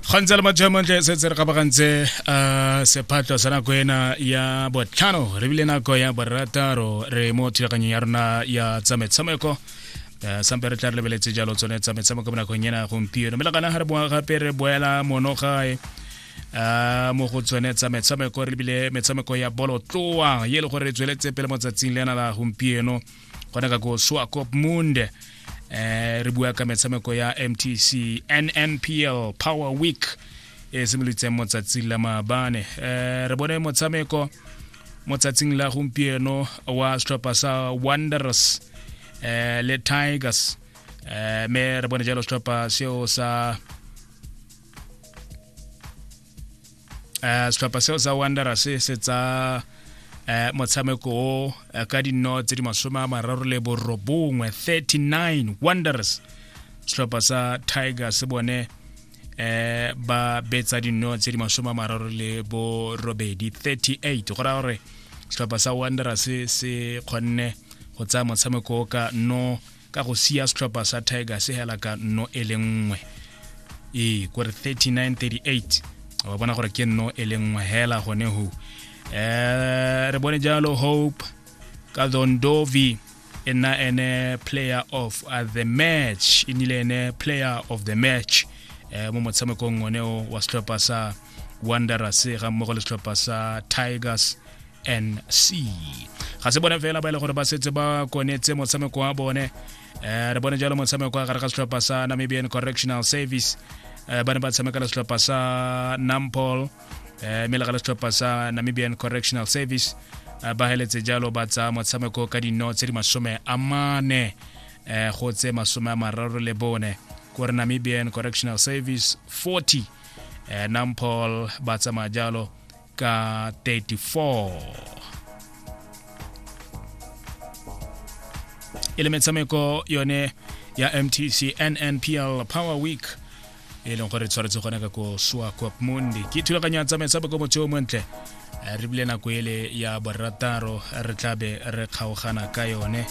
ga ntse le majamantle se tse re gabagantse um sephatlo sa nako ena ya botlhano re bile nako ya borataro re mo thulaganyong ya rona ya tsa metshameko um sampe re tla re lebeletse jalo tsone tsa metshameko mo nakong ena gompieno mme le gana ga re boa gape re boela mono gae um mo go tsone tsa metshameko re lebile metshameko ya bolotloa ye e le gore re tsweletse pele mo tsatsing le ena la gompieno gona ka ko swakop mund eh re bua ka metshameko ya mtc nnpl power week e simolotseng mo tsatsing la maabane eh re bone motshameko mo tsatsing la gompieno wa setlhopha sa wanderers eh le tigers eh me re bone jalo setlhopha seo sa eh setlhopha seo sa wanderers se tsa eh motshameko o eh, ka dinno tse di masome a mararo le borobongwe 39 wanderers setlhopha sa tiger se bone eh ba betsa dinno tse di masome a mararo le borobedi 38 go raya gore setlhopha sa wanderers se kgonne go tsaya motshameko o ka no ka go sia setlhopha sa tigers e hela ka nno e le nngwe ee kore 3938 wa bona gore ke nno e le nngwe hela gone ho eh re bone jalo hope ka dondovi e nna ene player of uh, the match e nile ene player of the match eh mo motshamekong one wa setlhopha sa wanderers ga mmogo le setlhopha sa tigers nc ga se bone fela ba e le gore ba setse ba konetse motshameko wa bone um re bone jalo motshameko wa gare ga setlhopha sa namibian correctional service um ba ne ba tshameka le setlhopha sa nampol um mme le ga le setlhopha sa namibian correctional service ba heletse jalo ba tsaya motshameko ka dino tse di masome a mane um go tse masome a mararo le bone kore namibian correctional service 40 eh, nampol ba tsamaya jalo ka 34 e le metshameko yone ya mtc nnpl power week e leng gore tshwaretse gone ka ko sua cop mundi ke thulaganyo ya tsamaetsaboko motho o montle eh, re bile nako ele ya borataro re tlabe re kgaogana ka yone